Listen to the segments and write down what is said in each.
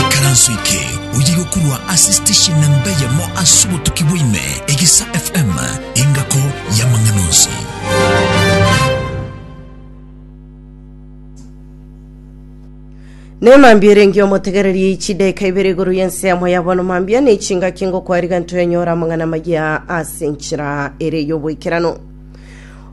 Ikaranso eke oyige korwa ase station na mbe yemo ase obotuki bwaime, Egesa FM, engako y'amang'ana onsi. Nemambia erenge omotegereria ichideka ibere igoro yense yamo yabono mambia ne chingaki ngokwariga ntoyanyora amang'ana maya ase enchera ere y'oboikerano.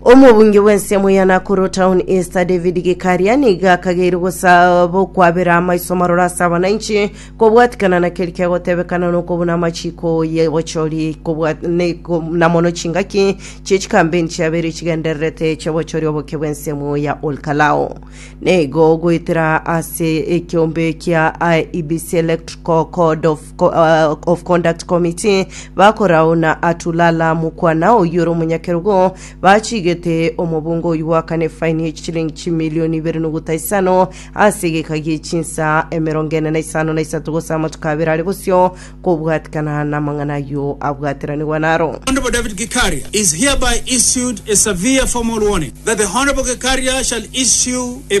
omobunge bw'ensemo ya nakuru town east david gikaria niga akageire gosaba okwabera amaiso maroro ase abananchi kobwatikana na keri kegotebekana nokobuna amachiko y'obochori kobwa- ne- ko- na mono chingaki chi'echikambeni chiabeire chigendererete chi'obochori oboke bw'ensemo ya olkalao neigo goetera ase ekiombe kia IEBC Electrical Code of of Conduct Committee bakorauna Atulala Mukwana oyore omonyakerogo bachigete omobunga oyio goakana efaini ye chichilingi chimilioni ibere noguta isano ase egeka gie chinsa emerongo ene na isano na isato gose amatuko abere are bosio kobwatikana namang'ana ayio abwateranigwa naro. Honourable David Gikaria is hereby issued a severe formal warning that the Honourable Gikaria shall issue a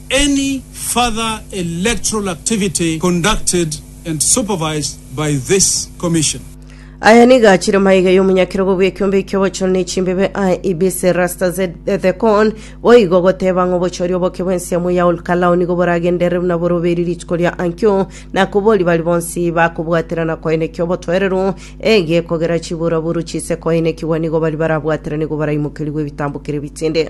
Any further electoral activity conducted and supervised by this Commission. Aya nigo achire maiga y'omonyakerogo bw'ekiombe ki'obochori ne chimbebe aye Ibis Rasta Z Thecon, boigo goteba ng'a obochori oboke bw'ensiamo ya Olkalau nigo boragenderere buna boroberi rituko ria ankio, na kobori bari bonsi bakobwatera na koenekia obotoereru ege kogera chiburaburu chise koenekigwa nigo bari barabwaterane igo baraimokerigwe ebitambo kere bitinde.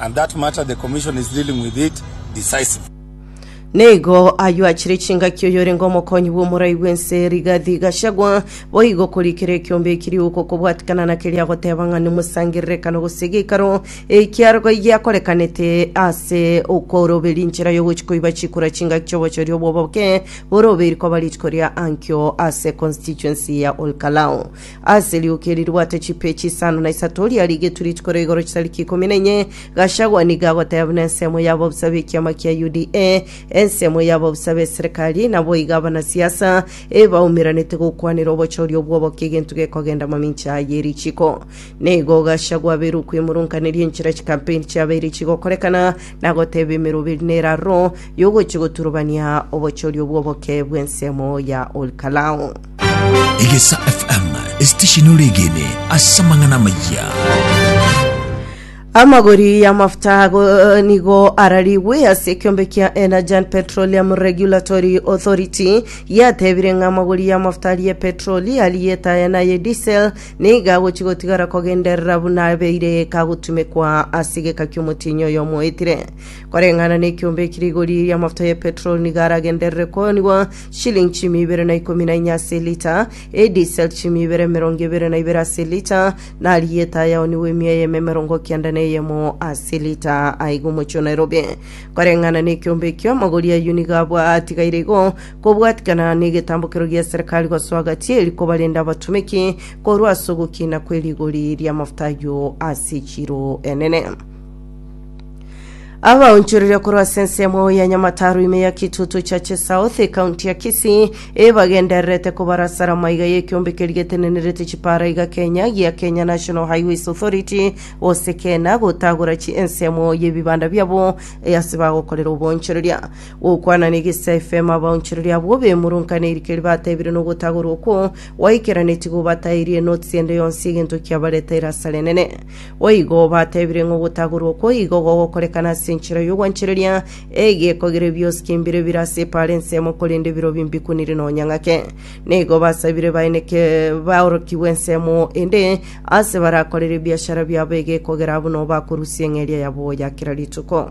and that matter the commission is dealing with it decisively. Nigo ayio achire chingaki oyorenge omokonyi bw'omorai bw'ense Rigathi Gachagua boigo korikera ekiombe eki rioka okobwatikana na keria agoteba ng'a nomosangererekano gose geikaro ekiarogoi giakorekanete ase okoroberia inchera y'ogochi koiba chikura chingaki chi'obochoria obwo boke borobeiri koba rituko ria ankio ase constituency ya Olkalau Ase erioka eri ribwate chipeechi isano na isato, riarigetwe rituko ria igoro chitariki ikomi na inye, Gachagua nigo agoteba buna ensemo y'ababusa b'ekiama kia UDA, ensemo y'ababusa b'eserekari, naboigo abanasiasa ebaumeranete gokwanera obochori obwo oboke egento gekogenda mamincha aya ye richiko. Nigo Gachagua abeire okwemurunkaneria enchera chikampeini chiabeire chigokorekana, na goteba emerobo eri nere aroro y'ogochia goturubania obochori obwo oboke bw'ensemo ya Olkalau. Egesa FM esitesheni oregene ase amang'ana amayia. Amagori y'amafuta ago eh, nigo ararigwe ase ekiombe kia Energy Petroleum Regulatory Authority yatebire ng'a amagori y'amafuta aria petroli aria etaya naye diesel niga agochi gotigara kogenderera buna abeire kagotumekwa ase egeka ki'omotienyi oyo omoetire koreng'ana n'ekiombe ekirigori y'amafuta ya petroli niga aragenderere koonigwa Shilingi chiumi ibere na ikomi na inye ase elita, edisel chiumi ibere emerongo ebere na ibere ase elita, na arieta ayaonigwe emia eyemo emerongo kenda na eyemo ase elita. Aiga omochie o Nairobi. Koreng'ana nekiombe ekio, amagori a Uniga abwo atigaire igo, kobwatikana negetambokero gia serikali gosoa gatieri kobarenda abatomeki korwa ase ogokina kwerigori riamafuta ayio ase echiro enene. abaonchoreria korwa ase ensemo ya nyamataru ime ya kitutu chache south ekaunti ya kisii ebagendererete kobarasara maiga y'ekiombe keri getenenerete chipara iga kenya gia kenya national highways authority gose kena gotagora chi ensemo y'ebibanda biabo eh, ase bagokorera oboonchoreria gokwana negisa fm abaonchoreria abwo bemurunka nerikeri batebire nogotagorwa okwo gwaikera netigo batairie notes ende yonsi egento kiabareta erasara enene Boigo batebire ng'a ogotagorwa okwo igo gogokorekana ase enchera y'ogwanchereria egeeko gere biosi kimbire bire ase epaara ensemo korende birobio mbikunire nonya ng'ake. Nigo basabire baeneke baorokigwe ensemo ende aase barakorere ebiashara biabo egeeko gera buna obakorusia eng'eria yabo ya kera rituko.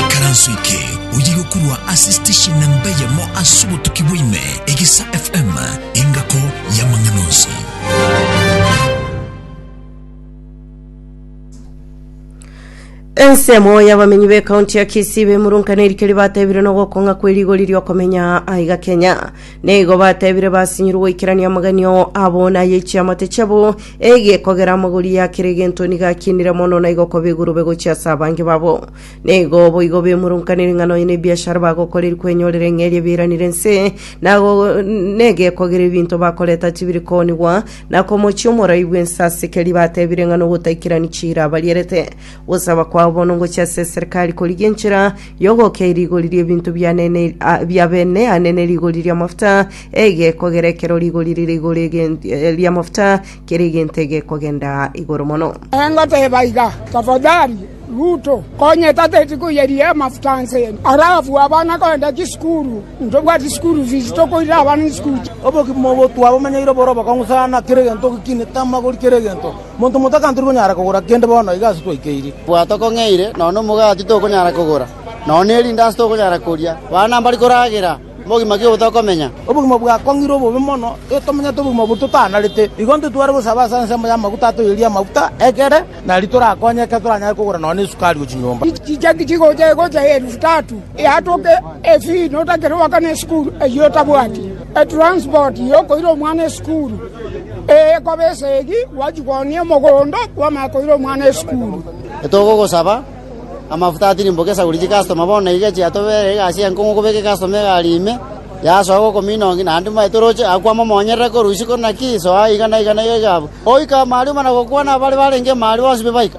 Ikaranso eke oye gokurwa ase station namba eyemo ase obotuki bwaime, Egesa FM, engako y'amang'ana onsi. ensemo y'abamenyi b'ekaunti ya kisii bemurunka nerikeri batebire nogokong'a kwe rigori riokomenya aiga kenya Nigo batebire basinyirwe goikerania amagena ao abo na ay'e chiamate chiabo, egekogera amagori ya kera egento nigo akinire mono na igo koba egurube gochia ase abange babo. Nigo boigo bemurunkanire ing'ana onye nebiashara bagokora eri kwenyorera eng'eria ebieranire ense, na go- negekogera ebinto bakoreta tibiri koonigwa, na komochia omorai bw'ense ase keria batebire ng'a nogotaikirani chiira abarierete. Gosaba kwao bono ngochia ase eserikari korigia enchera Yogokia rigori ri'ebinto bia bene ane ne rigori ri'amafuta, egekogera ekero rigori rire igoro ri'amafuta kera egento egekogenda igoro mono. Engoteba iga, Tafadhali, Ruto, konya etateti koyeria amafuta ense eye, arabu abana kogenda chisukuru, ntobwati school fees, tokoirera abana chisukuru. Obogima obo twabomanyeirie bore obokong'u sana, kera egento ogekinete amagori kera egento. Monto motaka tori konyara kogora kende bono iga ase twaikeirie. Bwa tokong'eire, nonya omogati tokonyara kogora, nonya nerindaasi tokonyara koria, bana mbari koragera mogima ki obotokomenya? Obogima bwakong'irwe obobe mono, igo tomenyete obogima obo totanarete. Igo intwe tware gosaba ase ensemo y'amaguta atoiyerie amaguta, ekere nari torakonye ekero toranyare kogora nonya nesukari ye chinyomba. Chichaki chigocha egocha eelifu tatu, eatoke efi notakere goaka nesukuru eyio otabwati. Etransport y'okoira omwana esukuru eye ekoba esegi gwachia koonia omogondo bw'amaya koira omwana esukuru. Togogosaba amafuta atirimboke esaguri chikastoma bono iga chiatobeire egasi enkong'u kobeka ekastoma egari ime yasoa gokomina ongi naende mbaye toroche agakwa momonyerere korwa isiko naki soa iga na iga na iga iga abwo oika amaruma na gokwana abare barenge imari bonsi bibaika.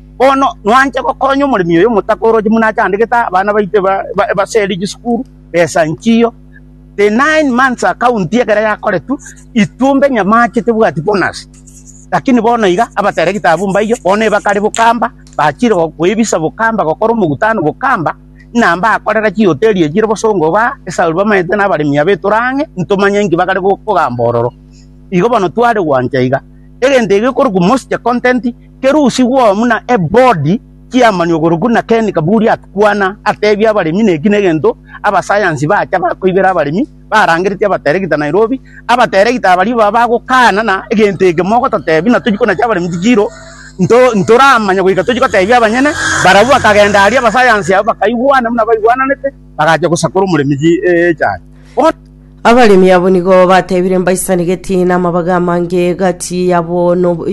Bono nwanche gokonya omoremi oyo omotaka oroche buna achandegete aa, abana baito eba- eba- ebaseri chisukuru, besa nchiyo. The nine months account ekero yakoretwe, itumbe nyamache tebwati bonus. Lakini bono iga, abateregete abwo mbaiyo, bono ebakare bokamba, bachire go- koebisa bokamba, gokora omogutano bokamba, ng'a mbakorera chihoteli echi chire bosongo igaa, esababu bamaete na abaremi aba etore ang'e, ntomanye nki bagare go- kogamba ororo. Igo bono tware gwancha iga. Egento eke gekorokwa most content. Kerusigwo buna ebodi chi'amanwe korokwo na Ken Kaburi atkwana atebia abaremi neki negento abasayansi bacha bakoibera abaremi barangeretie abateregita Nairobi, abateregita abaria baba bagokana na egento eke mogototebi na tochia konacha abaremi tichiro nto ntoramanya goika tochia gotebia abanyene barabwo bakagenda aria abasayansi abwo bakaigwana buna baigwananete bagacha gosakora omoremi chi eeh echaye. Bono. Abaremi abo nigo batebire mbaisane geti namabaga amange gati yabo no-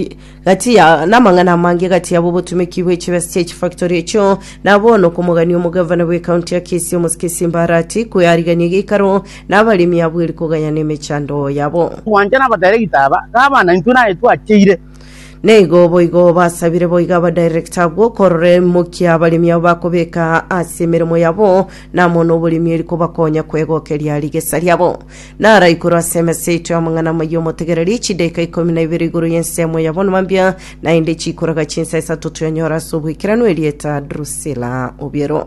gati ya namang'ana amange gati yabo obotumeki bwe chibesa chie chifactory echio nabo nokomogania omogavana bwe county ya Kisii omosike Simbarati kwearigania geikaro nabaremi abwo eri kogayana emechando yabo. Gwancha nabadaregita aba, Gavana, intwe naye twacheire. Neigo boigo basabire boiga abadirector abwo korora emokia abaremi abo bakobeka ase emeremo yabo namo noboremi eri kobakonya kwegokeria rigesa riabo. Nara igoro ase emesa yaito y'amang'ana amaya omotegereri chidaika ikomi na ibere igoro y'ensemo ya bonoma mbia, naende chikoraga chinsa isato toyanyora ase obwekeranu erieta Drusila Obiero.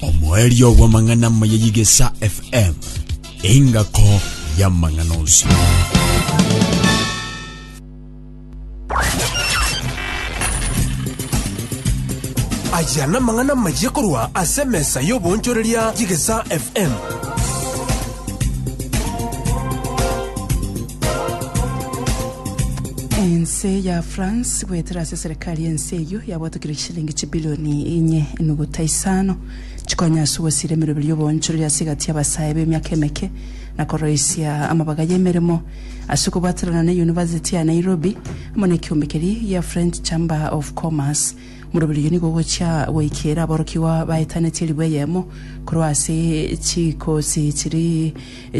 Omoerio bw'amang'ana amaya y'Igesa FM, engako y'amang'ana onsi. Aya namang'ana amaya korwa ase emesa y'obonchoreria y'Igesa FM. Ense ya France goetera ase serikali Kare ense eyio yabwatokire chishilingi chibilioni inye enuguta isano, chikonya ase ogosiira emeroberi y'oboonchoreri ase egati y'abasae b'emiaka emeke, na koroisia amabaga y'emeremo ase okobwatanana ne University ya Nairobi amo nekeombe keria gia French Chamber of Commerce. Omoroberi oyio nigo ogochia goikeera aborokigwa baetanetie ribu eyemo korwa ase chikosi chiria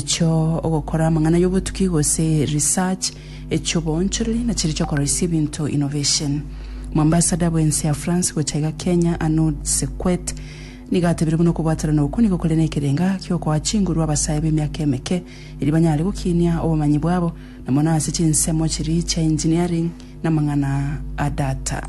chio ogokora amang'ana y'obotuki gose research, echi'oboonchoreri na chiria chi'okoroisia ebinto, innovation. Moambasada bw'ense ya France gocha iga Kenya, Arnaud Sequet, nigo atebirie buna okobwatanana okwo nigo kore nekerenga gi'okoa chinguru abasae b'emiaka emeke eria banyare gokinia obomanyi bwabo na mono ase chinsemo chiria chia engineering na amang'ana a data.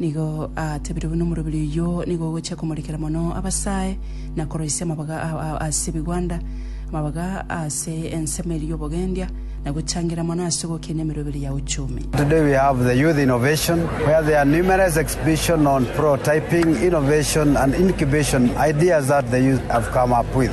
Nigo aatebire buna omoroberi oyio nigo ogochia komorekera mono abasae, na koroisia amabaga ao ase ebigwanda, amabaga ase ensemo eria y'obogendia, na gochangereria mono ase ogokina emeroberi ya uchumi. Today we have the Youth Innovation, where there are numerous exhibition on prototyping, innovation and incubation ideas that the youth have come up with.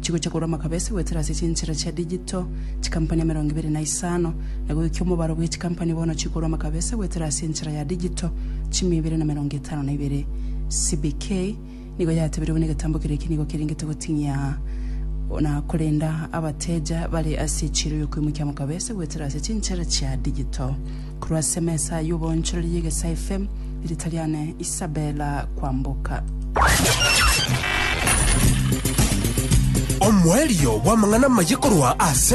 Chigocha korwa amakabesi goetera ase chinchera chia digital, chikampani emerongo ibere na isano. Na goika omobaro bwe chikampani bono chikorwa amakabesi goetera ase enchera ya digital, chimia ibere na emerongo etano na ibere. CBK nigo yatebirie buna egetambo keria eke nigo kerengete goting'ia na korenda abateja bare ase echiiro y'okoimokia amakabesi goetera ase chinchera chia digital. Korwa ase emesa y'oboonchoreri y'egesaefe, riita riane Isabella Kwamboka. Omoerio bw'amang'ana amaye korwa ase.